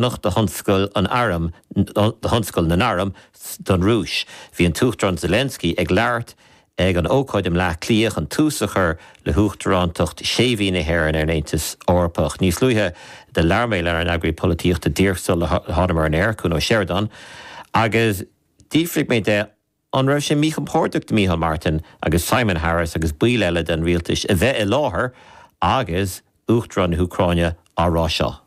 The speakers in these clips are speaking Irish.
Nocht do thionscal an airm, do thionscal na n-arm don Rúis. Bhí an tUachtarán Zelensky ag labhairt ag an ócáid i mBleá Cliath chun tús a chur le hUachtarántacht sé mhí na hÉireann ar an Aontas Eorpach. Níos luaithe do labhair mé lenár n-eagraí polaitíochta díreach sular thánamar ar an aer, Cuan Ó Seireadáin, agus d'fhiafraigh mé de, An raibh sé míchompordach do Micheál Martin agus Simon Harris agus baill eile den rialtais a bheith i láthair agus Uachtarán na hÚcráine á rá seo?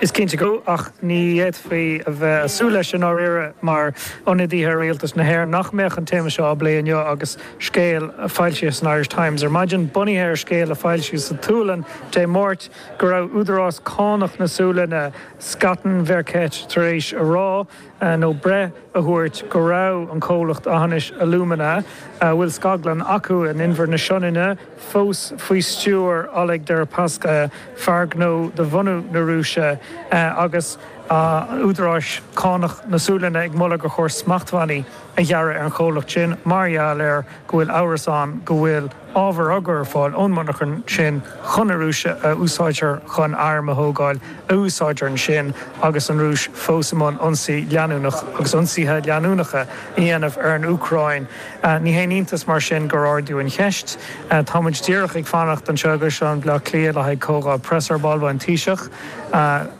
Is cinnte go, ach ní fhéadfaí a bheith ag súil leis i ndáiríre mar ionadaithe ar rialtas na hÉireann nach mbeadh an téama seo á bplé inniu agus scéal a foilsíodh san Irish Times ar maidin bunaithe ar scéal a foilsíodh sa tSualainn Dé Máirt go raibh údarás cánach na Sualainne, Skatteverket, tar éis a rá. nó breith a thabhairt go raibh an comhlacht Aughinish Alumina a bhfuil scaglann acu in Inbhear na Sionainne fós faoi stiúir Oleg Deripaska, fear gnó de bhunadh na Rúise, agus údaráis cánach na Sualainne ag moladh gur chóir smachtbhannaí a ghearradh ar an chomhlacht sin mar gheall air go bhfuil amhras ann go bhfuil. ábhar á chur ar fáil ón monarchan sin chun na Rúise a úsáidtear chun airm a thógáil a úsáidtear ansin agus an Rúis fós i mbun ionsaí leanúnach agus ionsaithe leanúnacha a dhéanamh ar an Úcráin. Ní haon iontas mar sin gur ardaíodh an cheist. Tá muid díreach ag fanacht anseo i gCaisleán Bhleá Cliath le haghaidh comhdháil preasa ar ball, beidh an Taoiseach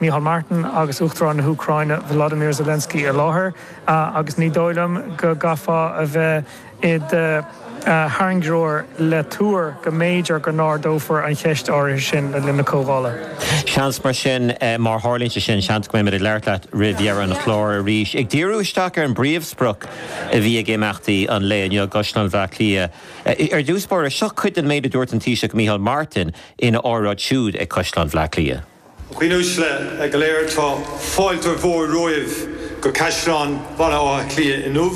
Micheál Martin agus Uachtarán na hÚcráine Volodymyr Zelensky i láthair agus ní dóigh liom go gcaithfeá a bheith i do thairngreoir le tuar go mb'fhéidir go n-ardófar an cheist áirithe sin le linn na comhdhála. Seans mar sin, má tharlaíonn sé sin, seans go mbeimid ag labhairt leat roimh dheireadh an chláir arís, ag díriú isteach ar an bpríomhsprioc a bhí ag imeachtaí an lae inniu i gCaisleán Bhleá Cliath. Ar dtús báire, seo cuid den méid a dúirt an Taoiseach Micheál Martin ina óráid siúd ag Caisleán Bhleá Cliath. A dhaoine uaisle go léir tá fáilte mhór romhaibh go Caisleán Bhaile Átha Cliath inniu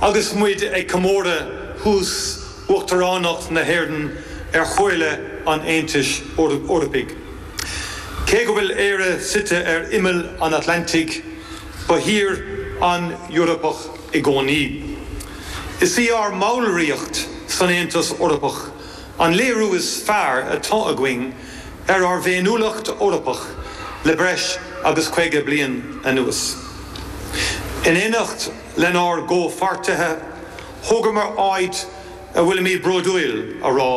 agus muid ag comóradh thús Uachtaránacht na hÉireann ar Chomhairle an Aontais Eorpaigh. Cé go bhfuil Éire suite ar imeall an Atlantaigh, ba thír an-Eorpach i gcónaí. Is í ár mballraíocht san Aontas Eorpach an léiriú is fearr atá againn ar ár bhféiniúlacht Eorpach le breis agus 50 bliain anuas. In éineacht lenár gcomhpháirtithe, thógamar áit a bhfuilimid bródúil a rá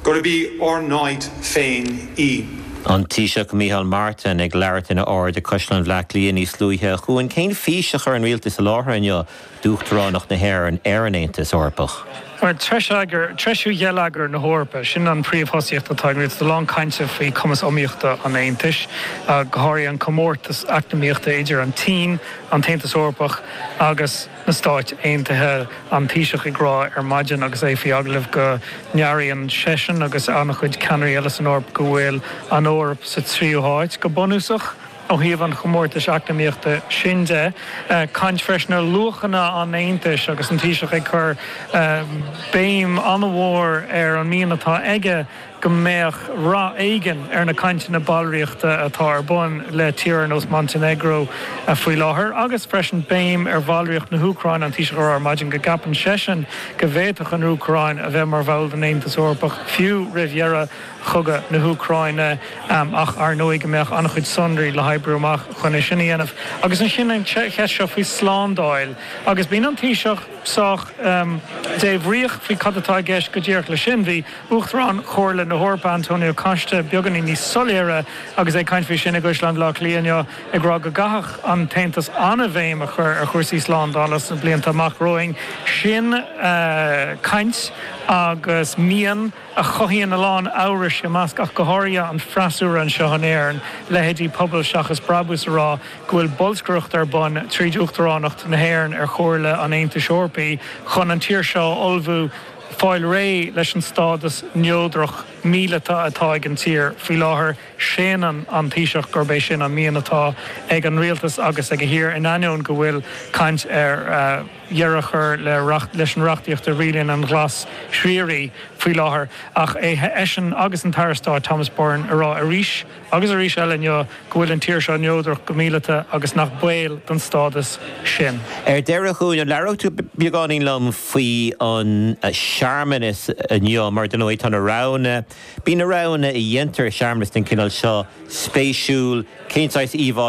gurb í ár n-áit féin í. An Taoiseach Micheál Martin ag labhairt ina óráid ag Caisleán Bhleá Cliath níos luaithe. A Chuain, cén fís a chuir an rialtas i láthair inniu? d'Uachtaránacht na hÉireann ar an Aontas Eorpach. Tréan-treisiú gheilleagar na hEorpa, sin an phríomhthosaíocht atá ag rialtas a lán cainte faoi chumas iomaíochta an Aontais, go háirithe an comórtas eacnamaíochta idir an tSín, an tAontas Eorpach agus na Stáit Aontaithe. An Taoiseach ag rá ar maidin agus é faoi agallamh go n-airíonn seisean agus an-chuid ceannairí eile san Eoraip go bhfuil an Eoraip sa tríú háit, go bunúsach. Ó thaobh an chomórtais eacnamaíochta sin de, caint freisin ar luachanna an Aontais agus an Taoiseach ag cur béim an-mhór ar an mian atá aige go mbeadh rath éigin ar na cainteanna ballraíochta atá ar bun le tír ar nós Montainéagró faoi láthair agus freisin béim ar bhallraíocht na hÚcráine. An Taoiseach a rá ar maidin go gceapann seisean go bhféadfadh an Úcráin a bheith mar bhall den Aontas Eorpach fiú roimh dheireadh chogadh na hÚcráine ach, ar ndóigh, go mbeadh an-chuid sonraí le hoibriú amach chun é sin a dhéanamh. Agus ansin an cheist seo faoi slándáil agus bíonn an Taoiseach sách débhríoch faoi cad atá i gceist go díreach leis sin. Bhí Uachtarán Chomhairle na hEorpa, Antonio Costa, beagáinín níos soiléire agus é ag caint faoi sin i gCaisleán Bhaile Átha Cliath inniu ag rá go gcaithfeadh an tAontas an-bhéim a chur ar chúrsaí slándála sna blianta amach romhainn. Sin caint agus mian. a chothaíonn a lán amhrais i measc ach go háirithe an freasúra anseo in Éirinn, leithéidí Pobal Seachas Brabús a rá go bhfuil bolscaireacht ar bun tríd Uachtaránacht na hÉireann ar Chomhairle an Aontais Eorpaí chun an tír seo a ullmhú fáil réidh leis an stádas neodrach míleata atá ag an tír faoi láthair. Séanann an Taoiseach gurb é sin an mian atá ag an rialtas agus ag a thír in ainneoin go bhfuil caint ar dheireadh a chur le reacht, leis an reachtaíocht a rialaíonn an glas triarach faoi láthair, ach é, eisean agus an tAire Stáit Thomas Byrne, a rá arís agus arís eile inniu go bhfuil an tír seo neodrach go míleata agus nach baol don stádas sin. Ar deireadh, a Chuain, an labhrófá beagáinín liom faoi an searmanas inniu, mar ar ndóigh tá na roghanna, bíonn na roghanna a dhéantar i searmanas den chineál seo spéisiúil, cén saghas íomhá,